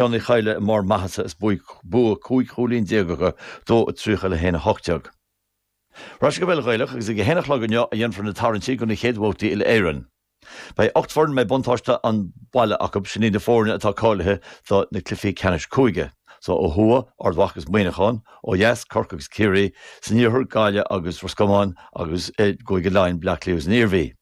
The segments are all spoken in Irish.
Shane Uí Chadhla i mbarr maitheasa is bua cúig chúilín déag acu, 2 30 le 1 18. Ar ais go bpeil Ghaelach agus ag a haon a chlog inniu a dhéanfar na tarraingtí do na chéad bhabhtaí Uile-Éireann. Beidh ocht bhfoireann a mbeidh buntáiste an bhaile acu, sin iad na foirne atá cáilithe do na cluichí ceannais cúige. So ó thuaidh, Ard Mhacha agus Muineachán, ó dheas, Corcaigh agus Ciarraí, san iarthar, Gaillimh agus Ros Comáin, agus i gCúige Laighean, Bleá Cliath agus an Iarmhí.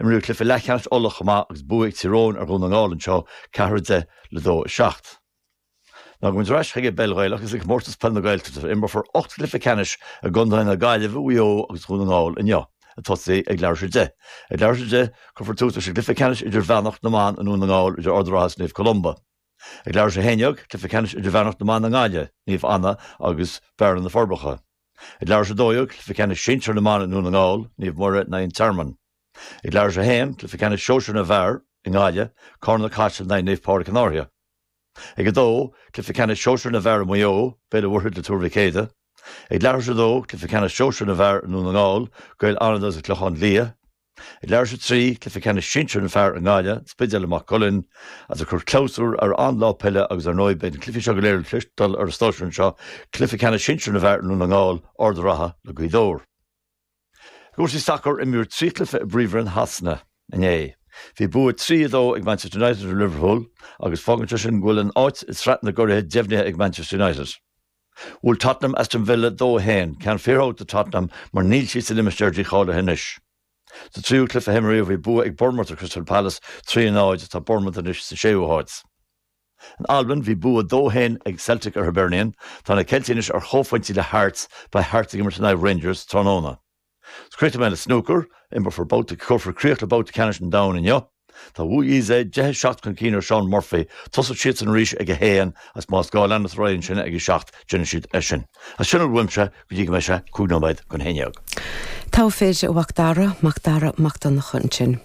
Imríodh cluiche leathcheannais Uladh chomh maith agus bua ag Tír Eoghain ar Dhún na nGall ansin, 4-10 le 2-7. Ach gabhfaidh muid ar ais chuig an bpeil Ghaelach agus ag Comórtas Peil na Gaeltachta a imreofar ocht gcluiche ceannais i gcontaetha na Gaillimhe, Mhaigh Eo agus Dhún na nGall inniu, ag tosú ag leathuair tar éis a deich. Ag leathuair tar éis a deich, cuirfear tús leis an gcluiche ceannais idirmheánach na mban i nDún na nGall idir Ard a' Rátha is Naomh Columba. Ag leathuair tar éis a haon déag, cluiche ceannais idirmheánach na mban i nGaillimh, Naomh Anna agus Bearna-Na Forbacha. Ag leathuair tar éis 12 Cluiche Ceannais Sinsir na mBan i nDún na nGall, Naomh Muire, in aghaidh an Tearmainn. Ag leathuair tar éis 1, Cluiche Ceannais Sóisir na bhFear, i nGaillimh, Carna-Caiseal in aghaidh Naomh Pádraig an Fháirche. Ag 2, Cluiche Ceannais Sóisir na bhFear i Maigh Eo, Béal an Mhuirthead le Tuar Mhic Éadaigh. Ag leathuair tar éis 2, Cluiche Ceannais Sóisir na bhFear i nDún na nGall, Gaeil Fhánada agus An Clochán Liath. Leathuair tar éis 3, Cluiche Ceannais Sinsir na bhFear i nGaillimh, An Spidéal le Maigh Cuilinn, is ag cur clabhsúr ar an lá peile agus ar ndóigh beidh na cluichí seo go léir le cloisteáil ar an stáisiún seo, Cluiche Ceannais Sinsir na bhFear i nDún na nGall, Ard a' Rátha le Gaoth Dobhair. I gcúrsaí sacair imríodh trí chluiche i bPríomhroinn Shasana inné. Bhí bua trí, a dó ag Manchester United ar Liverpool agus fágann sé sin go bhfuil an áit i Sraith na gCuraidh deimhnithe ag Manchester United. Bhuail Tottenham Aston Villa 2-1, ceann fíormhór do Tottenham mar níl siad sa limistéar dícháilithe anois. Sa tríú cluiche a himríodh bhí bua ag Bournemouth ar Crystal Palace, 3-0, tá Bournemouth anois sa séú háit. In Albain bhí bua 2-1 ag Celtic ar Hibernian, tá na Ceiltigh anois ar chomhphointí le Hearts, beidh Hearts ag imirt in aghaidh Rangers tráthnóna. Is críochnóidh mé le snúcar, imreofar babh cuirfear críoch le Babhta Ceannais an Domhain inniu. Tá Wu Yize 10 7 chun cinn ar Shaun Murphy. Tosóidh siadsan arís ag 1 is más gá leanfar ar aghaidh ansin ag 7 d'oidhche. Is sin é uaimse go dtí go mbeidh sé 5 nóiméad chun 11. Togha fir a Mhac Dara, Mac Dara Mac Donncha ansin.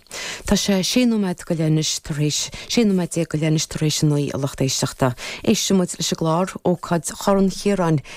Tá sé 6 nóiméad go leith anois tar éis 16 nóiméad go leith anois tar éis 9 a lucht éisteachta. Éisteoidh muid leis an gclár, ócáid Chorn Chiaráin,